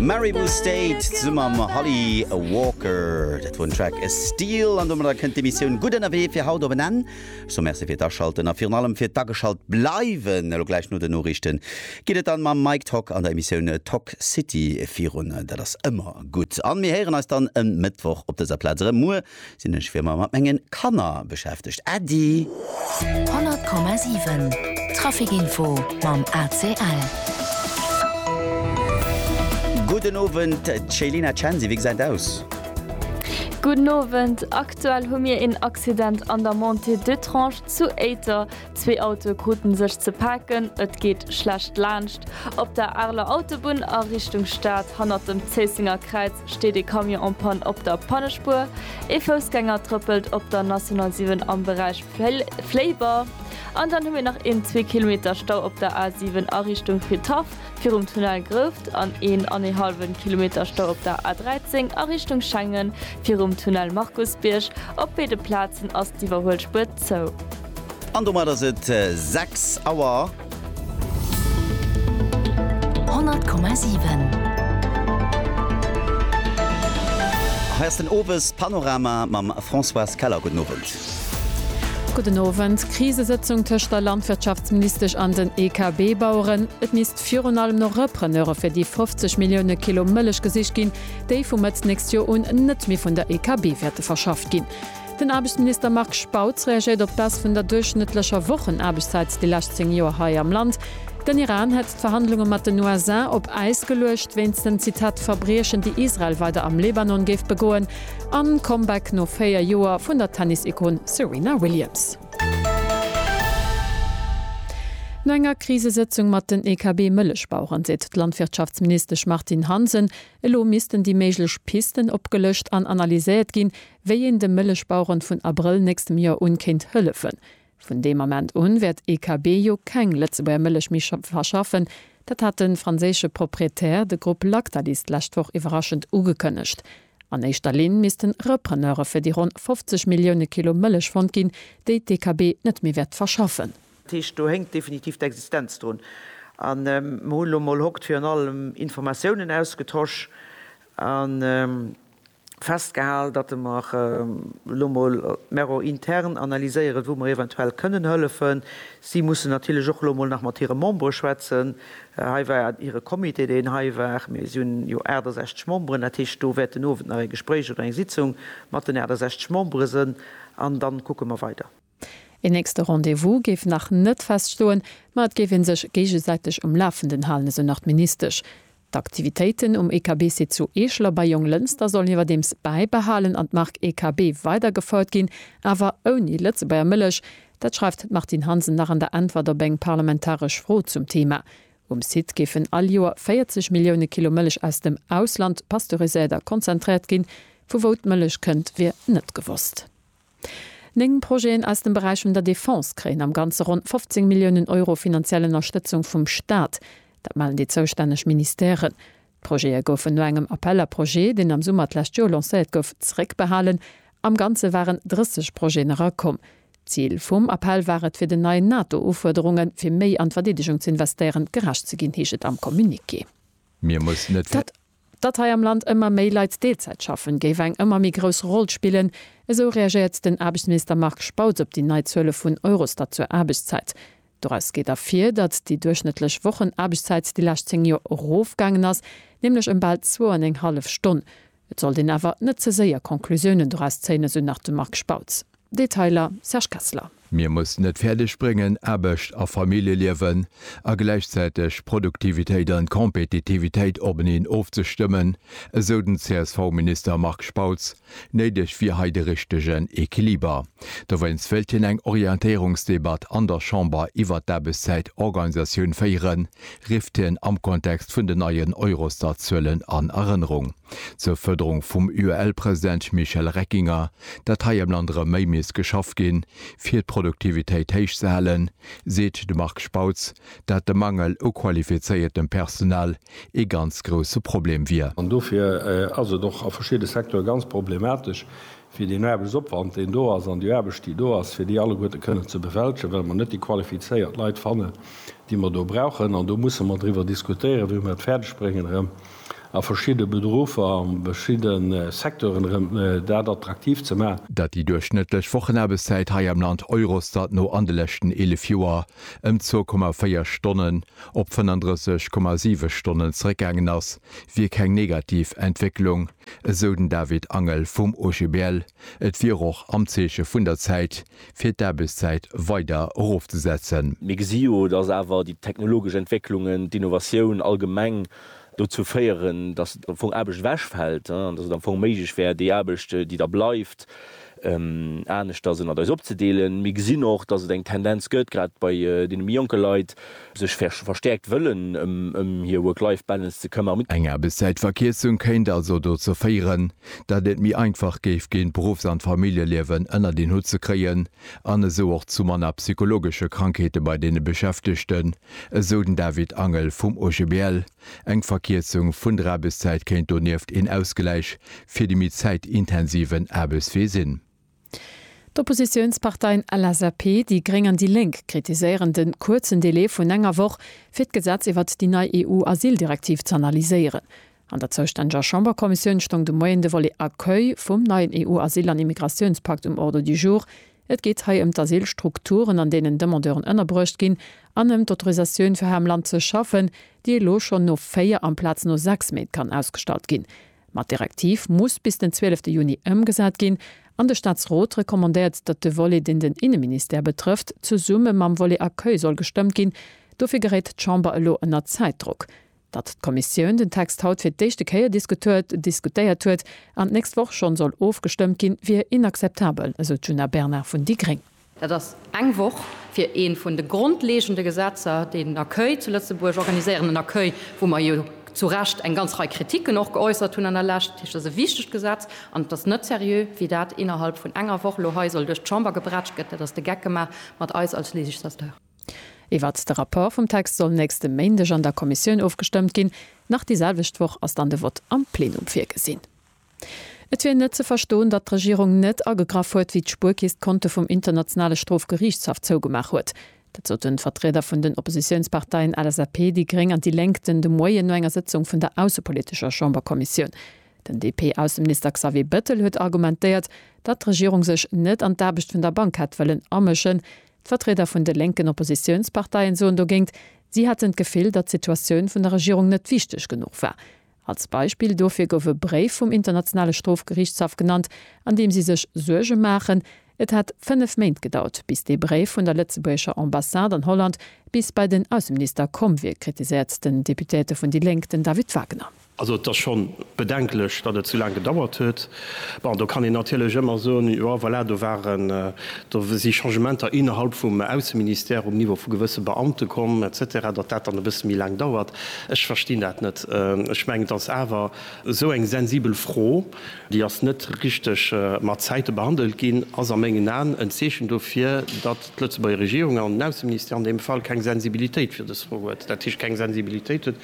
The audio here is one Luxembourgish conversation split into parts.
Maribou State zesumme mam Holly Walker. Dat wor den Track A Steal an domadder kënnt d'Emissioun Gutt ënnerwee fir haut op en Enn. Ech soe Merci fir d'Aschalten a virun allem fir d'Ageschalt bleiwen. Elo gläich no den Noriichten geet et dann mam Mike Tock an der Emissioun Toxcity virun. Dat ass ëmmer gutt an mir héieren eis dann e Mëttwoch op dëser Plaz erëm. Muer Sinn ech fir mer mat mengen Kanner beschäftegt Äddi. 100,7 Trafikinfo mam ACL. Gudden Owend Céline Censi, wéi gesäit et aus? Gudden Owend, aktuell hu mir een Accident an der Montée d'Etrange zu Éiter. Zwee Autoe kruten sech ze paken, et geet schlecht laanscht. Op der Areler Autobunn a Richtung Stad, hannert dem Zéissenger Kräiz, steet ee Camion en panne op der Pannespuer. Ee Foussgänger trëppelt op der National 7 am Beräich Fléiber. An dann hu mir nach een zwee Kilometer Stau op der A 7 a Richtung Fridhaff virum Tunnel Grouft an een an ee hallwen Kilometer Stau op der A 13 a Richtung Schengen virum Tunnel Markusbierg. Op béide Plazen ass d'Iwwerhuelspuer zou. An domat ass et 6 Auer. 100,7. Hei ass den Owes Panorama mam Françoise Keller. Gudden Owend. Gudden Owend. Krisesëtzung tëscht der Landwirtschaftsministesch an den EKB-Baueren. Et misst virun allem no Repreneure fir déi 50 Millioune Kilo Mëllech gesicht ginn, déi vu Mëtt nächst Joer un net méi vun der EKB wäerte verschafft ginn. Den Aarbechtsminister Marc Spautz reagéiert op d'Baisse vun der duerchschnëttlecher Wochenaarbechtszäit déi lescht 10 Joer hei am Land. Den Iran hätt d'Verhandlunge mat den USA op Äis geluecht wéinst den, Zitat, Verbriechen déi Israel weider am Lebanon géif begoen. A Comeback no 4 Joer vun der Tennis-Ikon Serena Williams. No enger Krisesëtzung mat den EKB-Mëllechbaueren seet d'Landwirtschaftsministesch Martine Hansen, elo missten déi méiglech Pisten opgelëscht an analyséiert ginn, wéi een de Mëllechbaueren vun Abrëll nächstem Joer un kéint hëllefen. Vun deem Ament un wäert EKB jo keng Lëtzebuerger Mëllech méi verschaffen. Dat hat de franséische Proprietär, de Grupp Lactalis, d'lescht Woch iwwerraschend ugekënnegt. An éischter Linn missten Repreneure fir déi ronn 50 Millioune Kilo Mëllech fonnt ginn, déi d'EKB net méi wäert verschaffen. Dat heescht, do hänkt definitiv d'Existenz drun. A mer hu lo mol hokt virun allem Informatiounen ausgetosch. festgehal, datte mer elo emol d'Mero intern analyséieren, wou mer eventuell kënnen hëllefen. Si mussen natierlech och elo emol nach mat hire Membere schwätzen. Hei war hire Comité, deen hei war. Mir si hunn jo 68 Memberen, dat heescht, do wäert den Owend nach e Gespréich oder eng Sitzung mat den 68 Membere sënn an dann kucke mer weider. Een nächste Rendez-vous géif nach net feststoen, ma et géif ee sech géigesäiteg um Lafenden halen, esou nach d'Ministesch. D'Aktivitéiten um EKB-Site zu Eechel a bei Jonglënster sollen iwwerdeems bäibehalen an d'Mark EKB weider gefouert ginn, awer ouni Lëtzebuerger Mëllech. Dat schreift d'Martine Hansen nach an der Äntwert op eng parlamentaresch Fro zum Theema. Um Site géifen all Joer 40 Millioune Kilo Mëllech aus dem Ausland pasteuriséiert a konzentréiert ginn. Vu wou d'Mëllech kënnt, wier net gewosst. Néng Projeten aus dem Beräich vun der Defense kréien am Ganze ronn 15 Milliounen Euro finanziell Ënnerstëtzung vum Staat. Dat mellen déi zoustänneg Ministèren. D'Projete goufen no engem Appel à projets, deen am Summer d'lescht Joer lancéiert gouf, zeréckbehalen. Am Ganze waren 30 Projeten erakomm. D'Zil vum Appell war et, fir den neien NATO-Ufuerderunge fir méi an d'Verdeedegung ze investéieren, gerecht ze ginn, heescht et am Communiqué. Mir mussen net. Datt hei am Land ëmmer méi Leit Deelzäit schaffen, géif eng ëmmer méi grouss Roll spillen, esou reagéiert den Aarbechtsminister Marc Spautz op déi nei Zuele vun Eurostat zur Aarbechtszäit. Doraus geet ervir, datt déi duerchschnëttlech Wochenaarbechtszäit déi lescht 10 Joer erofgaangen ass, nämlech ëm bal zwou an eng hallef Stonn. Et sollt een awer net ze séier Conclusiounen doraus zéien, esou nach de Marc Spautz. Detailer, Serge Kessler. Mir mussen et fäerdeg bréngen, Aarbecht a Familljeliewen a gläichzäiteg Produktivitéit an Kompetitivitéit openeen ofzestëmmen, esou den CSV-Minister Marc Spautz. Néideg wier hei de richtegen Equiliber. Dowéinst wéilt hien eng Orientéierungsdebatt an der Chamber iwwert d'Aarbechtszäitorganisatioun féieren, rifft hien am Kontext vun den neien Eurostat-Zuelen an Erënnerung. Zur Fërderung vum UEL-President Michel Reckinger, dat hei am Land erëm méi misst geschafft ginn, fir d'Produktivitéit héich ze halen, seet de Marc Spautz, dat de Mangel u qualifizéiertem Personal ee ganz grousse Problem wier. An dofir ass et och a verschidde Secteure ganz problematesch, fir deen Aarbechtsopwand, deen do ass, an déi Aarbecht, déi do ass, fir déi alleguerte kënnen ze bewältegen, well mer net déi qualifizéiert Leit fannen, déi mer do brauchen. An do musse mer driwwer diskutéieren, wéi mer et fäerdeg bréngen, erëm a verschidde Berufer, a beschidde Secteuren erëm dat attraktiv ze maachen. Datt déi duerchschnëttlech Wochenaarbechtszäit hei am Land Eurostat no an de leschten 11 Joer ëm 2,4 Stonnen op 35,7 Stonnen zeréckgaangen ass, wier keng negativ Entwécklung. Esou den David Angel vum OGBL. Et wier och am Zeeche vun der Zäit, fir d'Aarbechtszäit weider erofzesetzen. Mir gesi jo, datt awer déi technologesch Entwécklungen, d'Innovatioun allgemeng dozou féieren, datt am Fong Aarbecht ewechfält an datt et am Fong méiglech wär, déi Aarbecht, déi da bleift, aneschters ënnert eis opzedeelen. Mir gesinn och, dass et eng Tendenz gëtt, grad bei deene méi jonke Leit, sech verstäerkt wëllen ëm hir Work-Life-Balance ze këmmern. Eng Aarbechtszäitverkierzung kéint also dozou féieren, datt et méi einfach géif ginn, d'Beruffs an d'Familljeliewen ënnert een Hutt ze kréien an esou och zu manner psychologesche Krankheete bei deene Beschäftegten, esou den David Angel vum OGBL. Eng Verkierzung vun der Aarbechtszäit kéint donieft een Ausgläich fir de méi zäitintensiven Aarbechtswee sinn. D'Oppositiounsparteien LSAP, déi gréng an déi lénk kritiséieren de kuerzen Delai vun enger Woch, fir d'Gesetz iwwert déi nei EU-Asyldirektiv z'analyséieren. An der zoustänneger Chamberkommissioun stoung de Moien de Volet Accueil vum neien EU-Asyl an Immigratiounspakt um Ordre du jour. Et geet hei ëm d'Asylstrukturen, an deenen Demandeuren ënnerbruecht ginn, an ëm d'Autorisatioun, fir hei am Land ze schaffen, déi elo schonn no véier amplaz no sechs Méint kann ausgestallt ginn. Ma d'Direktiv muss bis den 12 Juni ëmgesat ginn, an de Staatsrot recommandéiert, datt de Volet, deen den Inneministère betrëfft, zesumme mam Volet Accueil soll gestëmmt ginn. Dofir geréit d'Chamber elo ënner Zäitdrock. datt d'Kommissioun den Text haut fir d'éischte Kéier diskutuert, diskutéiert huet an d'nächst Woch schonn soll ofgestëmmt ginn, wier inakzeptabel, esou d'Djuna Bernard vun déi gréng. Dat ass eng Woch fir ee vun de grondlegende Gesetzer, déi den Accueil zu Lëtzebuerg organiséieren, en Accueil, wou mer jo zu Recht eng ganz Rei Kritiken och geäussert hunn an der Lescht. Dat heescht, et ass e wichtegt Gesetz an et ass net seriö, wéi dat innerhalb vun enger Woch elo hei soll duerch d'Chamber gebretsch gëtt. Dat ass de Geck gemaach mat eis als Législateur. Iwwert de Rapport vum Text soll nächste Méindeg an der Kommissioun ofgestëmmt ginn. Nach déi selwecht Woch ass dann de Vott am Plenum virgesinn. Et wier net ze verstoen, datt d'Regierung net agegraff huet, wéi d'Spuerkeess d'Konte vum Internationale Strofgeriichtshaff zougemaach huet. Dat soten d'Vertrieder vun den Oppositiounsparteien LSAP, déi gréng an déi Lénk den de Moien no enger Sëtzung vun der aussepolitescher Chamberkommissioun. Den DP-Ausseminister Xavier Bettel huet argumentéiert, datt d'Regierung sech net an d'Aarbecht vun der Bank hätt wëllen amëschen, D'Vertrieder vun de lénken Oppositiounsparteien soen dogéint, si hätten d'Gefill, datt d'Situatioun vun der Regierung net wichteg genuch war. Als Beispill dofir gouf e Bréif vum Internationale Strofgeriichtshaff genannt, an deem si sech Suerge maachen, et hätt fënnef Méint gedauert, bis dee Bréif vun der lëtzebuergescher Ambassade an Holland bis bei den Ausseminister komm wier, kritiséiert den Deputéierte vun déi Lénk, den David Wagner. Also et ass scho bedenklech, datt et sou laang gedauert huet. Bon, do kann een natierlech ëmmer soen, jo voilà, do waren, do si Changementer innerhalb vum Ausseministère um Niveau vu gewësse Beamte komm et cetera, datt dat dann e bësse méi laang dauert. Ech verstinn dat net. Ech mengen, et ass awer esou eng sensibel Fro, déi ass net richteg mat Zäite behandelt ginn, ass a mengen Aen en Zeechen dofir, datt d'Lëtzebuerger Regierung an den Ausseministère an deem Fall keng Sensibilitéit fir dës Fro huet, dat heescht keng Sensibilitéit huet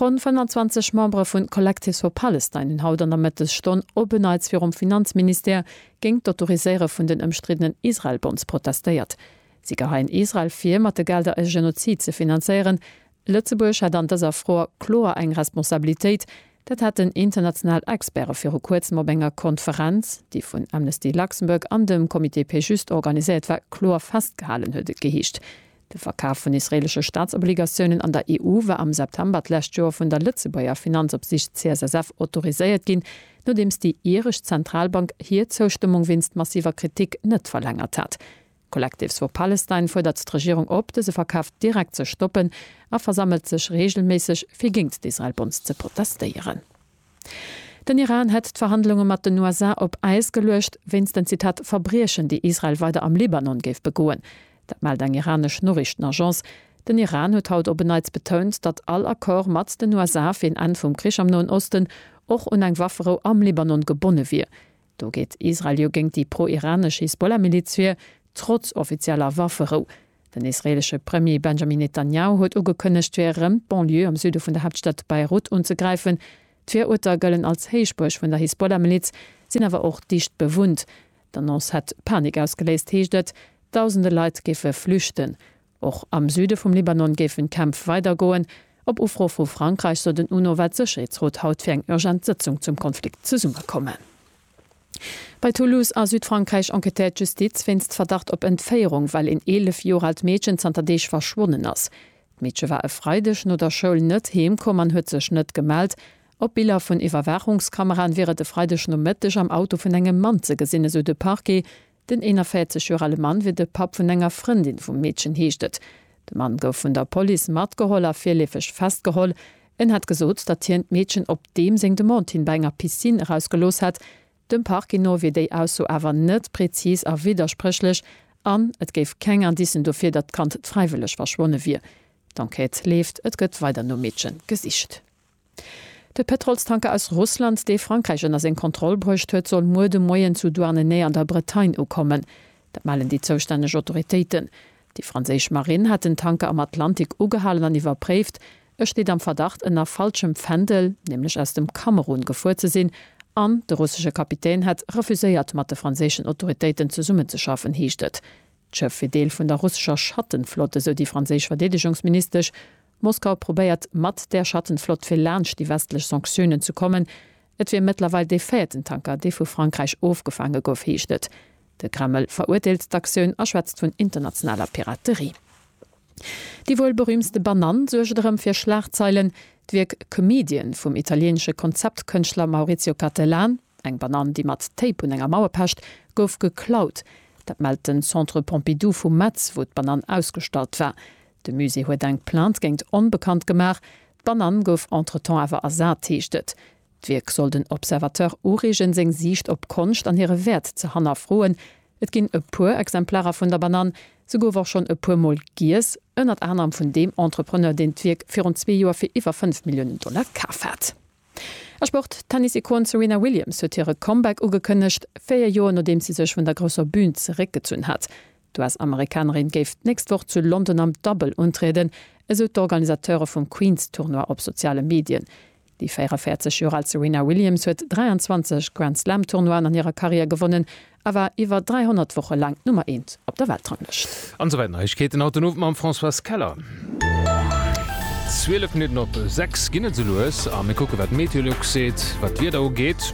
Ronn 25 Membere vu Collectives for Palestine hunn haut an der Mëttesstonn op en Neits virum Finanzministère géint d'Autoriséiere vun den ëmstriddenen Israel-Bonds protestéiert. Si geheien Israel vir, mat de Gelder e Genozid ze finanzéieren. Lëtzebuerg hätt an dëser Fro kloer eng Responsabilitéit. Dat haten international Experte viru Kuerzem op enger Konferenz, déi vun Amnesty Luxembourg an dem Comité Péjuste organiséiert war, kloer festgehalen, huet et geheescht. De Verkaf vun israeelesche Staatsobligatiounen an der EU war am September d'lescht Joer vun der Lëtzebuerger Finanzopsiicht CSSF autoriséiert ginn, nodeems déi iresch Zentralbank hir Zoustëmmung wéinst massiver Kritik net verlängert hat. Collectives for Palestine fuerdert d'Regierung op, dëse Verkaf direkt ze stoppen a versammelt sech reegelméisseg, fir géingt d'Israel-Bonds ze protestéieren. Den Iran hätt d'Verhandlunge mat den USA op Äis geluecht, wéinst den, Zitat, Verbriechen, déi Israel weider am Libanon géif begoen. Dat mellt eng iranesch Noriichtenagence. Den Iran huet haut op en Neits betount, datt all Accord mat den USA fir een Enn vum Krich am Noen Osten och un eng Wafferou am Libanon gebonne wier. Do geet Israel jo géint déi pro-iranesch Hisbollah-Miliz vir, trotz offizieller Wafferou. Den israeelesche Premier Benjamin Netanjahu huet ugekënnegt, fir erëm d'Banlieue am Süde vun der Haaptstad Beirut unzegräifen. D'Viruerter gëllen als Héichbuerg vun der Hisbollah-Miliz, sinn awer och dicht bewunnt. D'Annonce hätt Panik ausgeléist, heescht et. Dausende Leit géife flüchten. Och am Süde vum Libanon géifen d'Kämpf weidergoen. Op Ufro vu Frankräich soll den UNO-Weltsécherheetsrot haut fir eng urgent Sëtzung zum Konflikt zesummekommen. Bei Toulouse a Südfrankräich enquêtéiert d'Justiz wéinst Verdacht op Entféierung, well een 11 Joer aalt Meedchen zanter Deeg verschwonnen ass. D'Meedche war e Freideg no der Schoul net heem komm an huet sech net gemellt. Op Biller vun Iwwerwaachungskameraen wier et e Freideg Nomëtteg am Auto vun engem Mann ze gesinn, esou de Parquet. Den 41 Joer ale Mann wier de Papp vun enger Frëndin vum Meedchen, heescht et. De Mann gouf vun der Police matgeholl a virleefeg festgeholl. En hat gesot, datt hien d'Meedchen op deem seng Demande hin bei enger Piscine erausgelooss hätt. Dem Parquet no wier déi Ausso awer net prezis a widderspréchlech an et géif keng Indicen dofir, datt d'Kand fräiwëlleg verschwonne wier. D'Enquête leeft, et gëtt weider nom Meedche gesicht. De Pëtrolstanker aus Russland, dee Frankräich ënner seng Kontroll bruecht huet, soll muer de Moien zu Douarnenez an der Bretagne ukommen. Dat mellen déi zoustänneg Autoritéiten. Déi franséisch Marinn hat den Tanker am Atlantik ugehalen an iwwerpréift. E steet am Verdacht, ënner falschem Fändel, nämlech aus dem Kamerun, gefuer ze sinn an de russesche Kapitän hätt refuséiert, mat de franséischen Autoritéiten zesummenzeschaffen, heescht et. D'Schëff wier Deel vun der russescher Schattenflott, esou déi franséisch Verdeedegungsministesch. Moskau probéiert, mat där Schattenflott fir laanscht déi westlech Sanktiounen ze kommen. Et wier mëttlerweil dee véierten Tanker, dee vu Frankräich ofgefaange gouf, heescht et. De Kreml verurteelt d'Aktioun a schwätzt vun internationaler Piraterie. Déi wuel berüümtste Banann suergt erëm fir Schlagzeilen. D'Wierk Comedian vum italieenesche Konzeptkënschtler Maurizio Cattelan, Eng Banann, déi mat Tape un enger Mauer pecht, gouf geklaut. Dat mellt den Centre Pompidou vu Metz, wou d'Banann ausgestallt war. De Musée huet eng Plainte géint Onbekannt gemaach. D'Banann gouf entretemps awer ersat, heescht et. D'Wierk soll den Observateur ureegen, seng Siicht op Konscht an hire Wäert ze hannerfroen. Et ginn e puer Exemplarer vun der Banann. Se gouf och schonn e puer Mol giess, ënnert anerem vun deem Entrepreneur, deen d'Wierk virun zwee Joer fir iwwer fënnf Milliounen Dollar kaf hat. A Sport, D'Tennis-Ikon Serena Williams huet hire Comeback ugekënnegt, véier Joer nodeems si sech vun der grousser Bün zeréckgezunn hat. D'US-Amerikanerin géif d'nächst Woch zu London am Dubbel untrieden, esou d'Organisateure vum Queens-Tournoi op soziale Medien. Déi 44 Joer al Serena Williams huet 23 Grand-Slam-Tournoien an hirer Karriär gewonnen a war iwwer 300 Woche laang d'Nummer eent op der Weltranglëscht. An esou weider Neiegkeeten haut den Owend mam Françoise Keller. 12 Minutten op 6 ginn et esou lues a mir kucke wat d'Meteolux seet wat d'Wieder ugeet.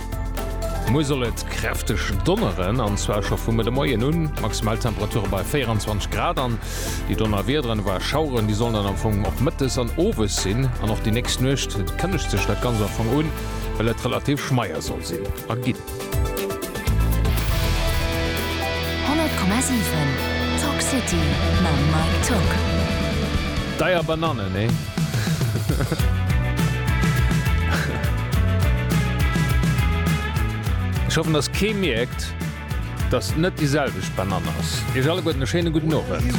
Muer soll et kräfteg donneren an zwar scho vum Mëtte Moien un. Maximaltemperature bei 24 Grad an déi Donnerwiederen oder Schaueren déi sollen dann am Fong och mëttes an owes sinn an och déi nächst Nuecht kënnegt sech dat Ganzt am Fong un, well et relativ schmeier soll sinn a ginn. Honnert Komma siwen Talk City mam Mike Tock. Deier Banane, nee? Ech hoffen, dass kee mierkt, dass et net déi selwecht Banane ass. Iech alleguerten e schéine gudden Owend.